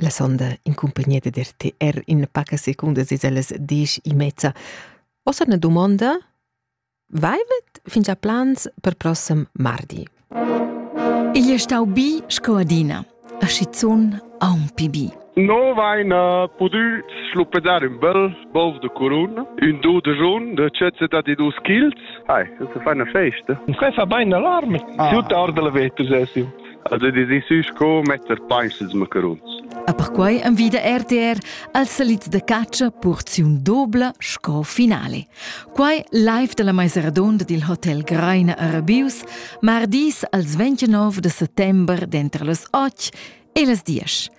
La sonda in cumpagnia da RTR in paca secundas es ellas desch e mezza. Ossa na dumonda, vaivet fin già plans per prossem mardi? Igl è stau bi sco adina, a schizun aunc bi. No vaina pudü schluppedar ün bel bov de curun, ün do de jun de cezeta di dus childs. Hai, das ist eine Feste. Uns fa bein alarm, ah. tutta orde la vetter sesim. El ha decisiu sco metter peis els macaruns. E perquei envida RTR als salits da catscha porziun dobla sco finale. Quai live dalla meisa redonda dil hotel Greina a Rabius, mardis als 29 de settember dentro las 8 e las 10.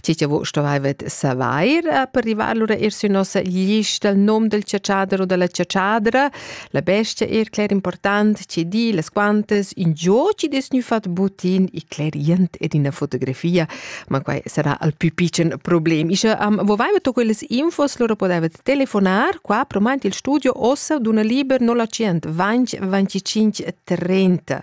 Tgi che vus stuvaivet savair eh, per rivar lura er sü nossa lista il nom del ciaciader o della ciaciadra, la bestia er cler important, ci di las quantas in giò ci des gnü fat butin i clerient ed ina fotografia, ma quai sarà al più piccen problem. Ische am vovaivet quellas infos, lura podaivet telefonar qua promaint il studio ossa d'una liber 0 100 20 25 30